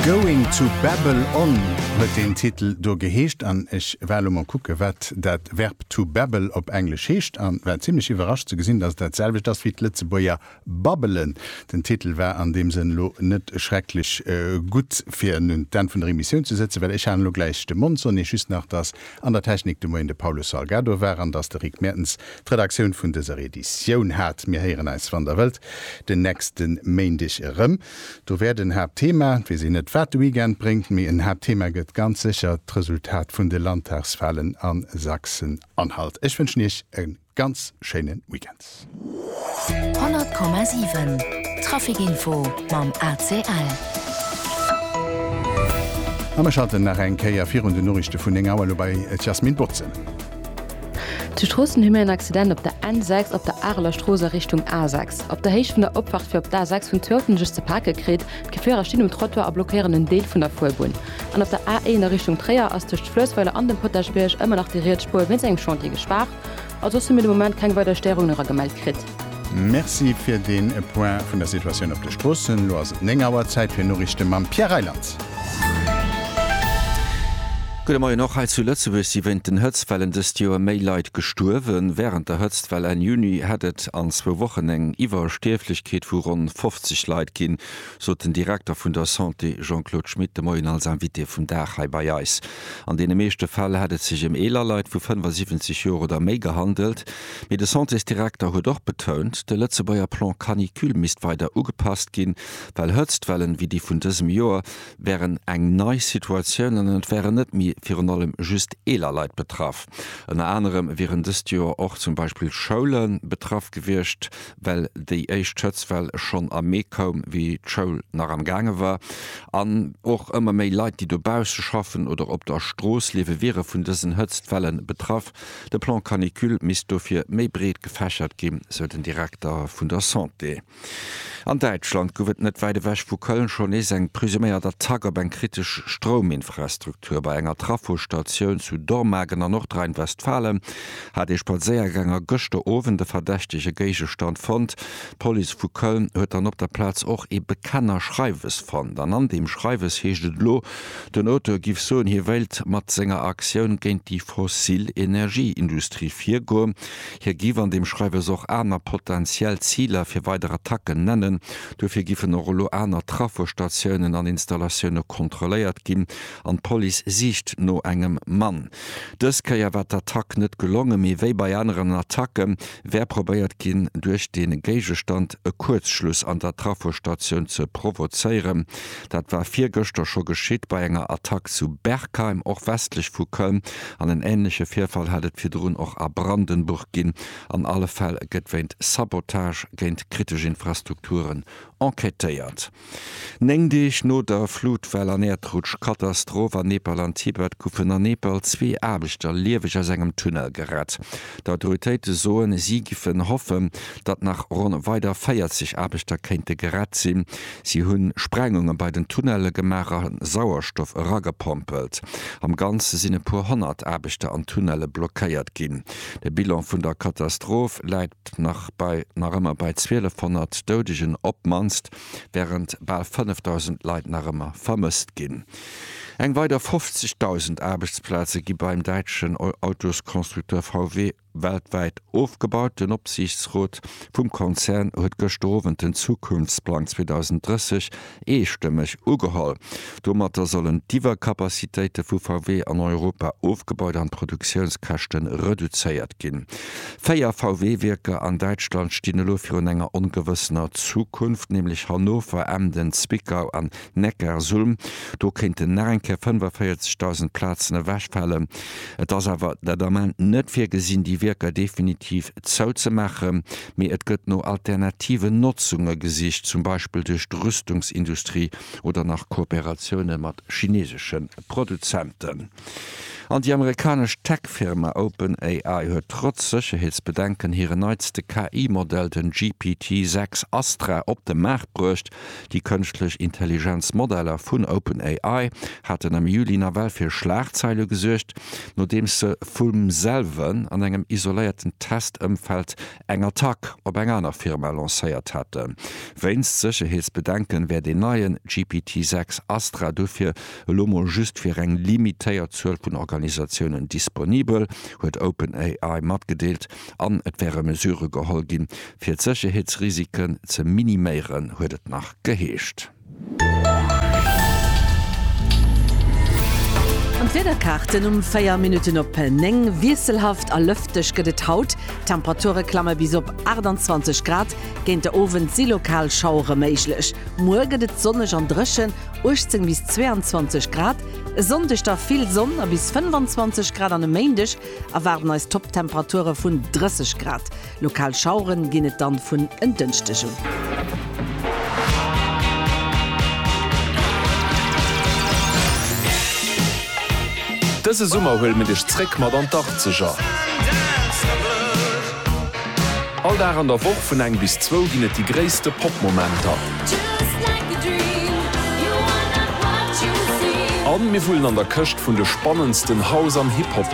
Going to babble on huet deen Titel do geheescht an ech war elo mol kucke wat dat Verb to babble op Englesch heescht a war zimmlech iwwerrascht ze gesinn, dass et dat selwecht ass wéi d'Lëtzebuerger babbelen. Den Titel war an deem Sënn elo net schrecklech gutt fir un d'Enn vun der Emissioun ze sëtzen, well ech haten elo gläich de Mond. Soen eech just nach, dass an der Technik de Moien de Paulo Salgado war an dass de Rick Mertens d'Redaktioun vun dëser Editioun hat. Mir héieren eis wann der wëllt Den nächsten Méindeg erëm. Do wäert en Haaptthema, weess een net wat de Weekend bréngt, mee en Haaptthema gëtt ganz sécher d'Resultat vun de Landtagswahlen a Sachsen-Anhalt. Ech wënschen Iech e ganz schéine Weekend. 100,7 Traficinfo mam ACL. A mir schalten nach eng Kéier virun den Noriichte vun 9 Auer elo bei d'Jasmine Boczel. Zu Stroossen hu mir en Accident op der N6 op der Areler Strooss a Richtung A6. Op der Héicht vun der Opfahrt fir op d'A6 hunn zwee Autoen sech ze pake kritt. D'Gefierer stinn um Trottoir a blockéieren en Deel vun der Fuerbunn. An op der A1 a Richtung Tréier ass tëscht Fluessweiler an dem Potaschbierg ëmmer nach déi riets Spuer wéinst engem Chantier gespaart. Als soss hu mir de Moment keng weider Stéierungen era gemellt kritt. Merci fir dee Point vun der Situatioun op de Stroossen. Elo ass et 9 Auer. Zäit fir Noriichte mam Pierre Reyland. Gudde Moien. Och hei zu Lëtzebuerg si wéint den Hëtztwellen dëst Joer méi Leit gestuerwen. Wärend der Hëtztwell Enn Juni hätt et an zwou Wochen eng Iwwerstierflechkeet vu ronn 50 Leit ginn, sot den Direkter vun der Santé Jean-Claude Schmit de Moien als Invité vum Dag hei bei eis. An deene meeschte Fäll hätt et sech ëm eeler Leit vu 75 Joer oder méi gehandelt. Mee de Santésdirekter huet och betount, de Lëtzebuerger Plan Canicule misst weider ugepasst ginn, well Hëtztwellen wéi déi vun dësem Joer wären eng nei Situatioun an et wären net méi virun allem just eeler Leit betraff. Ënner anerem wieren dëst Joer och zum Beispill Schoule betraff gewiescht, well déi éischt Hëtztwell schonn am Mee koum, wéi d'Schoul nach am gaange war. An och ëmmer méi Leit, déi dobausse schaffen oder op der Strooss liewe wiere vun dësen Hëtztwellen betraff. De Plan Canicule misst dofir méi breet gefächert ginn, sou den Direkter vun der Santé. An Däitschland gouf et net wäit ewech vu Köln schonn nees eng presuméiert Attack op eng kritesch Strouminfrastruktur. Bei enger Trafostatioun zu Dormagen an Nordrhein-Westfalen hat ee Spadséiergänger gëschter Owend e verdächtege Géigestand fonnt. D'Police vu Köln huet dann op der Plaz och ee Bekennerschreiwes fonnt an an deem Schreiwes heescht et elo, Den Auteur giff soen, hie wéilt mat senger Aktioun géint déi fossil Energieindustrie virgoen. Hie giff an deem Schreiwes och aner potentiell Ziler fir weider Attacken nennen. Dofir giffen och elo aner Trafostationen an installatioune kontrolléiert ginn an d'Police siicht no engem Mann. Dës Kéier war d'Attack net gelongen, mee wéi bei aneren Attacke wär probéiert ginn, duerch dee Géigestand e Kuerzschluss an der Trafostatioun ze provozéieren. Dat war virgëschter scho geschitt bei enger Attack zu Berkheim, och westlech vu Köln, an en änleche Virfall hat et virdrun och a Brandenburg ginn. An alle Fäll gëtt wéint Sabotage géint kritesch Infrastrukturen enquêtéiert. Néng Deeg no der Flutwell an Äerdrutschkatastroph an Nepal an Tibet goufen a Nepal zwee Aarbechter lieweg aus engem Tunnel gerett. D'Autoritéite soen, si giffen hoffen, datt nach ronn weider 40 Aarbechter kéinte gerett sinn. Si hunn Sprengunge bei den Tunnelle gemaach a Sauerstoff eragepompelt. Am Ganze sinn e puer honnert Aarbechter an Tunnelle blockéiert ginn. De Bilan vun der Katastroph läit nach bei nach ëmmer bei 1.200 Doudegen op d'mannst, wärend bal 5.000 Leit nach ëmmer vermësst ginn. Eng weider 50.000 Aarbechtsplaze gi beim däitschen Autosconstructeur VW Weltwäit ofgebauten Opsiichtsrot vum Konzern huet gëschter Owend den Zukunftsplang 2030 eestëmmeg ugeholl. Domatter sollen d'Iwwercapacitéite vu VW an Europa ofgebaut an d'Produktiounskäschte reduzéiert ginn. Véier VW-Wierker an Däitschland stinn elo virun enger ongewëssener Zukunft, nämlech Hannover, Emden, Zwickau an Neckarsulm. Do kéinten nach eng Kéier 45.000 Plazen ewechfalen. Et ass awer dat Ament net virgesinn, déi Wierker definitiv zouzemaachen, mee et gëtt no alternativen Notzunge gesicht, zum Beispill duerch d'Rüstungsindustrie oder nach Kooperatioune mat chineesesche Produzenten. An déi amerikanesch Tech-Firma OpenAI huet trotz Sécherheetsbedenken hiren neitste KI-Modell, den GPT-6 Astra, op de Maart bruecht. Déi Kënschtlech Intelligenz-Modeller vun OpenAI haten am Juli nawell fir Schlagzeile gesuergt, nodeems se vum selwen an engem isoléierten Test-Ëmfeld eng Attack op eng aner Firma lancéiert haten. Wéinst Sécherheetsbedenken wäert een neien GPT 6 Astra dofir elo mol just fir eng limitéiert Zuel vun Organisatiounen disponibel, huet OpenAI matgedeelt, an et wäre Mesurë geholl ginn, fir d'Sécherheetsrisiken ze miniméieren, huet et nach geheescht. An d'Wiederkaarten, Um 4 Minutten op 9, Wiesselhaft a lëfteg gëtt et haut, d'Temperature klamme bis op 28 Grad, géint de Owend si lokal Schauere méiglech. Muer gëtt et sonneg an dréchen, 18 bis 22 Grad. E Sonndeg da vill Sonn a bis 25 Grad an e Méindeg erwaarden eis Topptemperature vun 30 Grad. Lokal Schaueren ginn et dann vun en Dënschdeg un. Dëse Summer huele mir dech zréck mat an d'Arzeger. All Dag an der Woch vun eng bis zwou ginn et déi gréisste Pop-Momenter. A mir wullen an der Këscht vun de spannendsten House an Hip-Hop.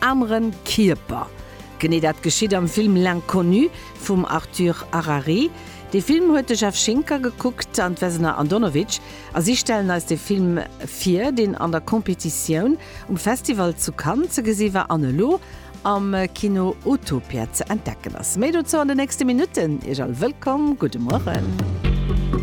Aneren Kierper. Genee dat geschitt am Film L'Inconnu vum Arthur Harari. Dee Film huet de Jeff Schinker gekuckt an d'Vesna Andonovic a si stellen eis de Film vir, deen an der Competitioun um Festival zu Cannes ze gesi war an elo am Kino Utopia ze entdecken ass. Méi dozou an de nächste Minutten. Iech all wëllkomm. Gudde Mueren.